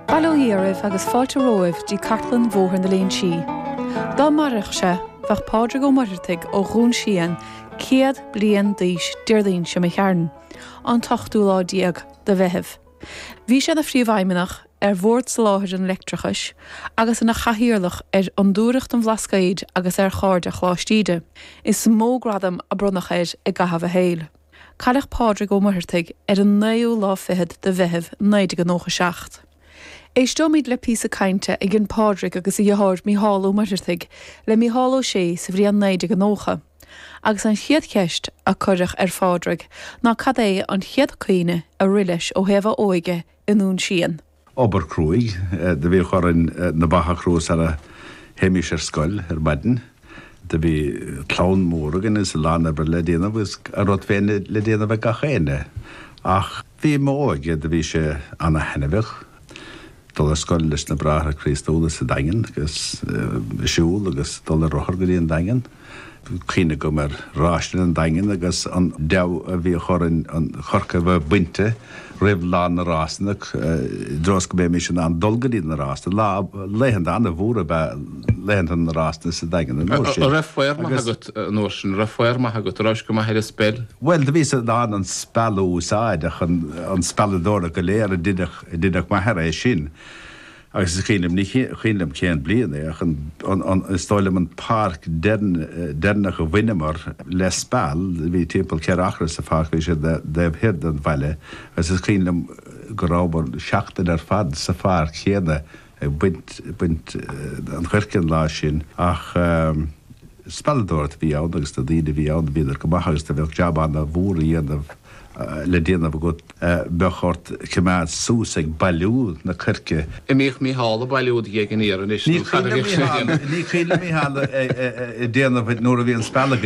Bail ó Dhia oraibh agus fáilte romhaibh dtí Cartlann Bhóthar na Léinsí. Dá mairfeadh sé, bheadh Pádraig Ó Muircheartaigh ó Dhún Síon céad bliain d'aois Déardaoin seo chugainn, an t-ochtú lá déag de Mheitheamh. Bhí sé ina Phríomhfheidhmeannach ar Bhord Soláthair an Leictreachais agus ina Chathaoirleach ar Fhondúireacht an Bhlascaoid agus ar Chairde Choláiste Íde. Is mó gradam a bronnadh air i gcaitheamh a shaoil. Cailleadh Pádraig Ó Muircheartaigh ar an naoú lá fichead de Mheitheamh 1997. Éisteoimid le píosa cainte a dhein Pádraig agus a dheartháir Micheál Ó Muircheartaigh le Micheál Ó Sé sa bhliain 1990, agus an chéad cheist a cuireadh ar Phádraig ná cad é an chéad cuimhne a rith leis ó thaobh a óige i nDún Síon. Obair cruaidh do bhíodh orainn na ba a chrú sara théimís ar scoil ar maidin. Do bhí clann mór againn agus a lán oibre le déanamh agus a rud féin le déanamh ag gach éinne. Ach bhí m'óige, do bhí sé ana-thaitneamhach dul ar scoil leis na Bráithre Críostúla sa Daingean agus siúl agus dul ar rothar go dtí an Daingean. Cuimhne go maith ar rásanna an Daingin agus an deabhadh a bhíodh orainn an choirce a bheith bainte roimh lá na rásanna, i dtreo is go mbeimis in ann dul go dtí na rásanna. Lá, laethanta an-mhóra ab ea laethanta na rásanna sa Daingean an uair sin. Raibh faobhar maith agat an uair sin, raibh faobhar maith agat, raibhais go maith ar an speil? Bhuel, do bhíos in ann an speal a úsáid ach an spealadóireacht go léir, dheineadh m'athair é sin. Agus is cuimhin liom, ní cuimhin liom cén bliain é, ach is dóigh liom an pháirc deireanach a bhaineamar le speal, bhí timpeall ceithre acra sa pháirc, bhí sé ar an dtaobh thoir den bhaile, agus is cuimhin liom go rabhamar seachtain ar fad sa pháirc chéanna ag baint an choirce an lá sin ach. Spealadóir a bhí ann agus na daoine a bhí ann, bhíodar go maith agus dá mbeadh jab ana mhór a dhéanamh, le déanamh agat, bheadh ort coimeád suas ag bailiú na coirce. An mbíodh Mícheál ag bailiú do ghéag an fhir anois nó cad a bhíodh sé a dhéanamh? Ní cuimhin liom Mícheál a déanamh nuair a bhí an speal againn.